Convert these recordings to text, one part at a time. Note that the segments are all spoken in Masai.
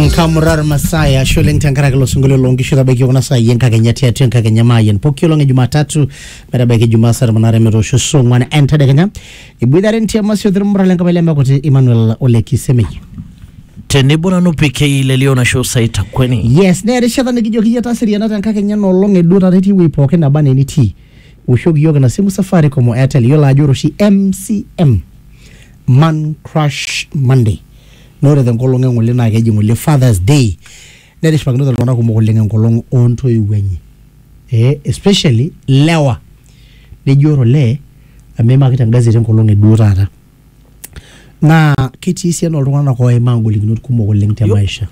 nkamurar masaya sholeng tenkaraki ilo sinkolio loonkishu tabaiki kuna saai enkakenya tiatua enkakenya maayian poki olong e jumatatu metabaiki jumaa saa tomon aare metoosho saa ong'uan entadekenya iboitare ntiamasi othirmura lenkapai lemekuti emmanuel ole kisemei tenebo nanu PK lelio nasho saita kweni yes naa erishata nikijoki iyie taseriana tenkakenya nolong eduo taata etii wuei pookin naba anaa enitii woshoki iyiook ina simu safaricom o airtel iyiolo ajo ore oshi mcm man crush monday Naa ore te nkolong e ng'ole naa keji ng'ole Father's Day. Netishipakinote iltung'anak kumok oleng enkolong oo ntoiwuo enye. Ee especially ilewa. Neji ore olee amu eimaki te gazeti enkolong e duo taata. Naa ketii esiana oo ltung'anak oimaa ngolikinot kumok oleng te maisha.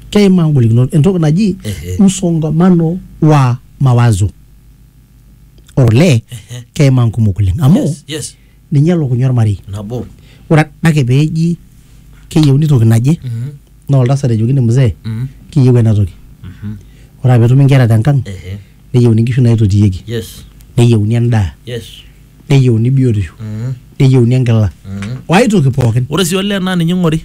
Keimaa ngolikinot entoki naji msongamano wa mawazo. Ore olee keimaa nkumok oleng amu ninye elukunya ormarei nabo ore adake peeji keyieuni toki naje Mhm. naa oltasat ejokini mzee Mhm. kiyieu ena toki Mhm. ore aa petumi inkera tenkang Ehe. neyieuni inkishu naitotiyieki yes neyieuni endaa yes neyieuni biotisho Mhm. neyieuni enkila Mhm. wae toki pookin ore sii olee naa ninye ing'ori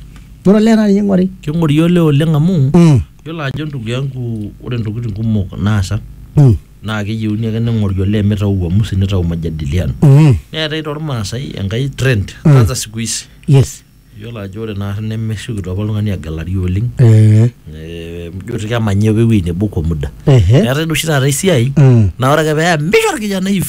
ore olee naa ninye ing'ori king'ori olee oleng amu mm. yiolo ajo ndugu yangu ore ntokitin kumok naasa Mm. naa keyieuni ake ning'ori olee mitau uamusi nitau majadiliano Mm. neetae tormaasai enkae trend kwanza siku hizi yes iyiolo ajo ore naari nemesiokito apa oltung'ani agelari oleng Eh, Eh, ijo ti kemanya apa ewueji nebo kwa muda ehe. neetae duo oshi taata esiai Mm. naa ore ake peya misho orkijanai iv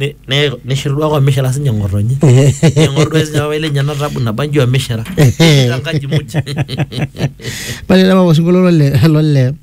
Ne- ne- neshiru duake omishira sinye ng'otonye eng'or duake sinye papai lenye ena tabu nabanji omishira tankaji muj Pale laba osinkolio lole lole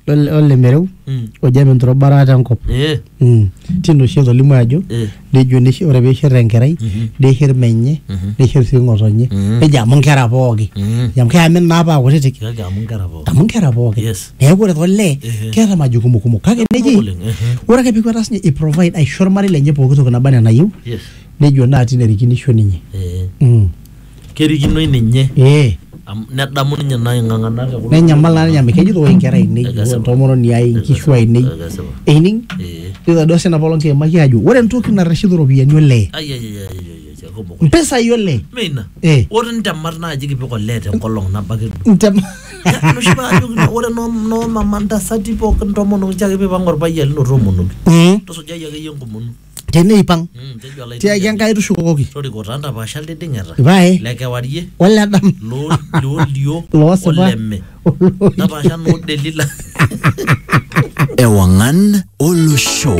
lole lole mereu Mm. oji ame nturubara tenkop. Eh, Mm. Tino oshi etolimu ajo eh, nejo neshi ore peishir enkerai Mhm. neishir menye Mhm. neishir sii ng'otonye Mhm. nejo amu nkera pooki Mhm. amu keamin naa paa kutitik kake amu nkera pookin amu nkera pooki yes neeku ore tolee Ehe. keeta majukumu kumok kake Kumok neji oleng, ehe. ore ake pikwata sinye iprovide aisho ormarei lenye pooki toki naba enaa enayieu yes nejo naa tine erikinisho ninye eh, Mm. kerikinoi ninye ee amu nedamu ninye naa ing'ang'ana te kulo nenyamal naa ninye amu kejito oi inkera ainei Ekesipa. oi entomononi ai inkishu ainei Ekesipa. eining Eh. nitadua sina poolong kiimaki ajo ore entoki narreshito iropiyiani olee Ai, ai, ai, ai, ai, ai. Kekumok oleng. mpisai oleng Mme ina. Eh. Ore ntemat naaji kipik olee tenkolong nabo ake duo. Ntem- Ya, enoshi kata ajoki na- ore noo noo mama ntasati pookin tomonoki nchoo ake piipang orpayian lino toomonoki. Mm, Tusujai akeyie enkomono. teneipang Mm, tejo olaitoriani. tiaki enkai tushukokoki Toriko taa ntapaasha liding'eta. pae Le kewarie. oledam Loo liolio. loosipa Oleme. Ntapaasha noo Delila. Ewangan Olosho.